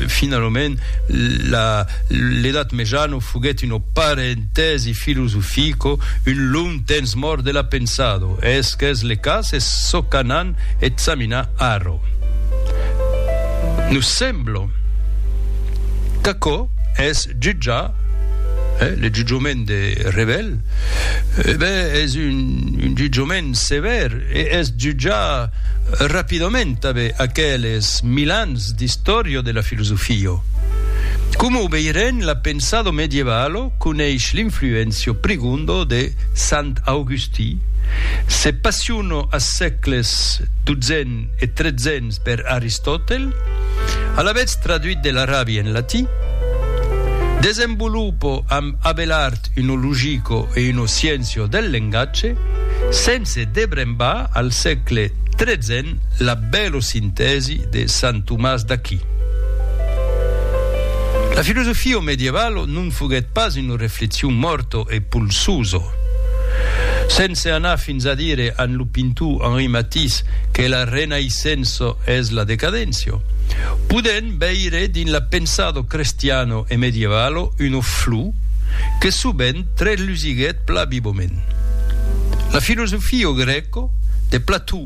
Finalament, l'edat mejana foguèt un parentèsi filosofico, un long temps mòrt de la pensada. Es qu'es le cas? Es çò qu'anam examinar ara. Nos sembla qu'aquò es jutjar, le jutjament de Revel, ben, es un jutjament sevèr e es jutjar rapidament tanben aqueles mil ans Res d'istòria de la filosofia. Coma o veirem, la pensado medievalo coneish l'influéncia prigunda de Sant Augustí, se passiona as sècles dotzèn e tretzèn per Aristòtel, alavetz traduit de l'arabi en latí, desenvolupa amb abelart una logica e una sciéncia del lengatge, sense debrembar al sècle XIII, la bèlo sintèsi de Sant Tomàs d'Aquí. La filosofia au medievalo non foguèt pas una reflexion mòrto e polsoso. Sense anar fins a dire amb lo pintor Henri Matisse que la renaissença es la decadéncia, podèm veire dins la pensado crestiano e medievalo una flor que sovent trèslusiguèt pla vivament. La filosofia grèca de Plató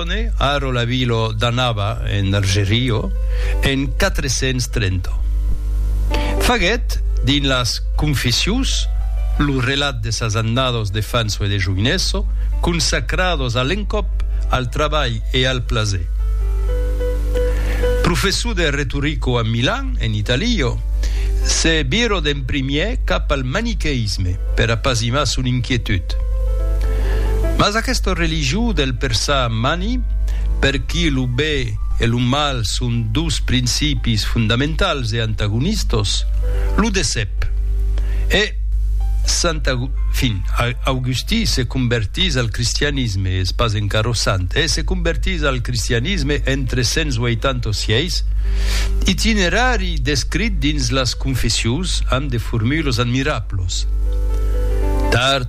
Scipione, Aro la vila d'Annaba en Argerio, en 430. Faguèt, dins las Confessions, lo relat de sas annados de fanço e de joinesso, consacrados a l'encòp, al trabalh e al plaser. Professor de retorico a Milan, en Italia, se virò d'en primièr cap al maniqueïsme per apasimar son inquietud. Mas aquesta religion del Per sa mani, per qui lo be e lo mal son dos principis fondamentals e antagonistos, lo decep. E sant fin, Augustí se convertís al cristianisme, es pas encara sant, e se convertís al cristianisme en 386, itinerari descrit dins las Confessions amb de formulos admirablos. Tard,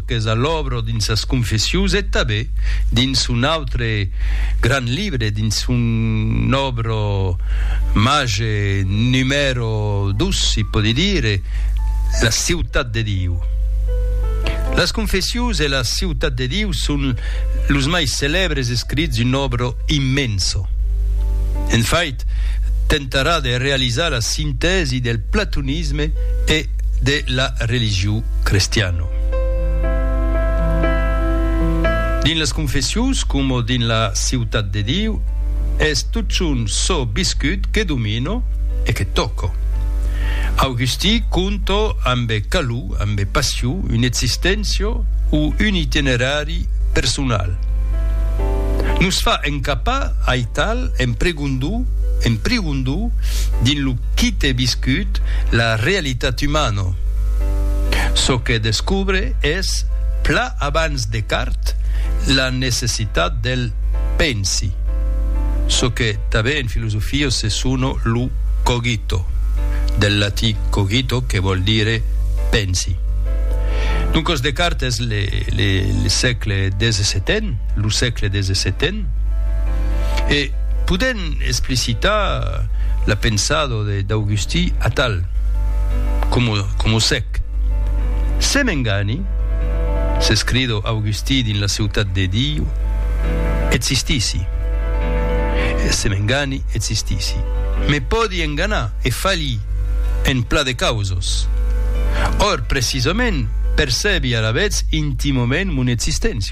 qu'es a l'òbro dins sas Confessius e tabé dins son autre grand libre, dins son òbro màger numèro dos, si pòdi dire, La ciutat de Diu. Las Confessius e La ciutat de Diu son los mai celèbres escrits d'un òbro immenso. En fait, Descartes tentarà de realizar la sintèsi del platonisme e de la religion crestiana. Dins las Confessions, coma dins la Ciutat de Diu, es totjorn çò viscut que domina e que tòca. Augustí conta ambe calor, ambe passion, una existéncia o un itinerari personal. Nos fa encapar ai. Tal, en pregondo, en prigondo, dins lo quite viscut, la realitat umano. Çò que descobre es, pla abans Descartes, la necessitat del pensi, çò que tanben en filosofia se sona lo cogito, del latí cogito que vòl dire pensi. Doncas Descartes es le sègle xvii, lo sègle xvii, E podèm explicitar la pensada d'Augustí atal, coma sec. Se m'engani, s'escrido Augustí dins la ciutat de Diu, existissi. Se m'engani, existissi. Me pòdi enganar e falhi en plan de causas. Or, precisament, percebi alavetz intimament mon existéncia.